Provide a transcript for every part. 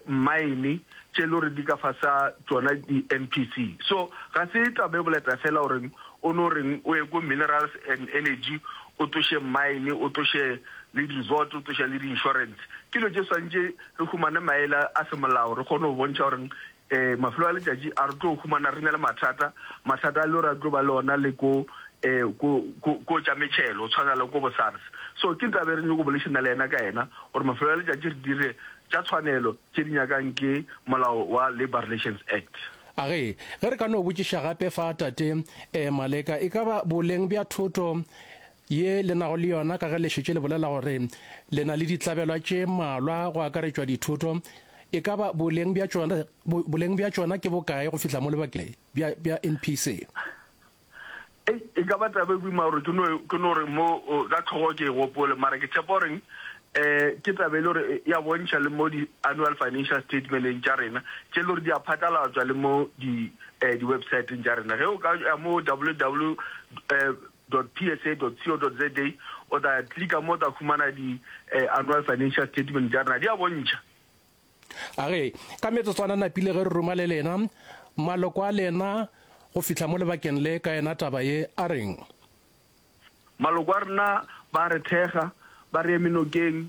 mmaene tše e le gore di ka fasa tšona di-NPC. So ga se taba e boleta fela gore o no reng o ye ko Minerals and Energy o tsoše mmaene, o tsoše le di-resort, o tsoše le di-insurance. Ke dilo tše swantše re humane maele a semolao re kgone go bontšha gore Ee, mafelo a letšatši a re tlo humana re na le mathata, mathata a leo ra tlo ba le ona le ko um ko, ko, ko tša metšhelo, go tshwana le ko bo SARS. So ke ntaba e re nyoko bolešana le yena ka yena, gore mafelo a letšatši re dire tša tshwanelo tše di nyakang ke molao wa Labour Relations Act. A re, Ge re ka no botšiša gape fa, Tate um Maleka, e ka ba boleng bja thoto ye le nago le yona ka ge le šetše le bolela gore le na le ditlabelwa tše mmalwa go akaretšwa dithoto, e ka ba boleng bja tšona, boleng bja tšona ke bokae go fihla mo lebakeng bja, bja NPC? Ei, e ka ba taba e boima gore ke no, ke no re mo ka tlhogo ke e gopole, mara ke tshepa goreng um ke taba e le gore e a bontšha le mo di-annual financial statementeng tša rena tše le gore di a phatlalatswa le mo di, um di-websiteng tša rena. Ge o ka ya mo ww, um www.psa.co.za o tla klika mo o tla humana di Annual Financial Statement tša rena, di a bontšha. A re, Ka metsotswana napile ge re ruma le lena, maloko a lena go fihla mo lebakeng le ka yena taba ye, a reng? Maloko a rena ba re thekga, ba re eme nokeng,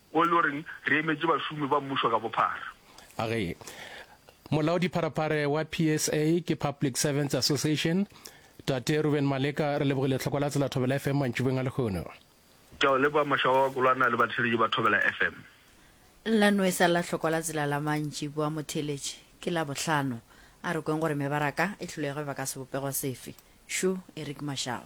Wo e le goreng re emetše bašomi ba mmušo ka bophara. Age. Molaodipharephare wa PSA ke Public Servants Association, Tate Reuben Maleka re lebogile tlhoko la tsela Thobela FM mantšubeng a lehono. Ke a o leboga Mashaba wa Kolwana le batheeletši ba Thobela FM. La nwesa la tlhoko la tsela la mantšibo a motheeletši ke Labohlano. A re kweng gore mebaraka e hlolege ba ka sebopego sefe. Shu, Eric Mashaba.